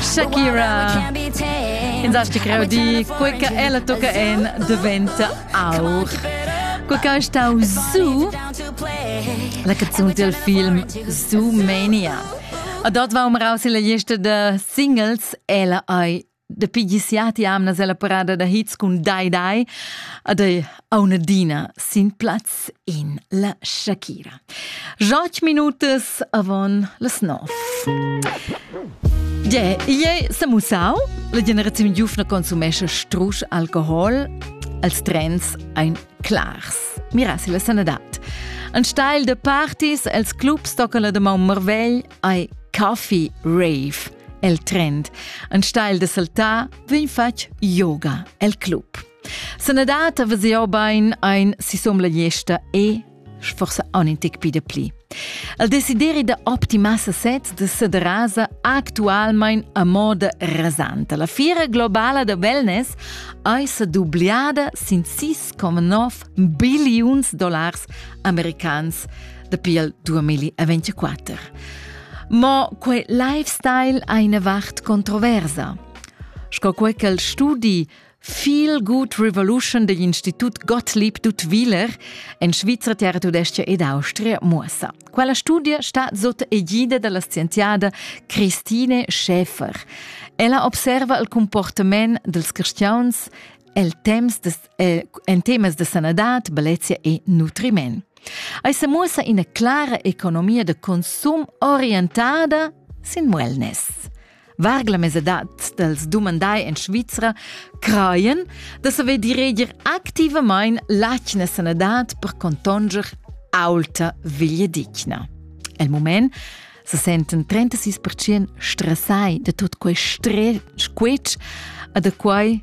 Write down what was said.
Shakira Pensasti greu di quei che ella tocca en diventa aur Quei che stau su La canzun del film Su Mania A dort war um raus in la lista de Singles Ella ei Dapi gisiati amnas ella parada da hits cun Dai Dai ad ei aunadina sin plaz in la Shakira. Joc minutas avon las nov. Yeah, iei se musau, la generazione giufna consumesce strusch alcohol, als trends ein clars. Mirassi la sanadad. An steil de parties els clubs tocca la de Mount Marvell ei Coffee Rave. El trend. Ein steil de saltar vegn fatg yoga el club. Sanadad a veseo bain ein si somla gesta e forse un in tic pide pli. El desideri da optimasa sez de sederasa actualmein a moda rasante. La fira globala de wellness ei se dubliada sin 6,9 billions dollars americans dapi il 2024. Mo quei lifestyle ha ina vart controversa. Sco quei che il studi Feel Good Revolution degl Institut Gottlieb Dutwiler en Svizra, Terra Tudestia ed Austria muossa. Quella studia sta sotto egida dalla scienziada Christine Schäfer. Ella observa il comportament dels cristians el temps des eh, en temas de sanadad, bellezia e nutriment. Ei se muossa ina clara economia de consum orientada sin wellness. Vargla mesadat dels dumandai en Svizra creien da saver direger activamain l'atgna sanadad per contonger aulta veglia digna. El moment se senten 36% stressai de tot quei stress adequai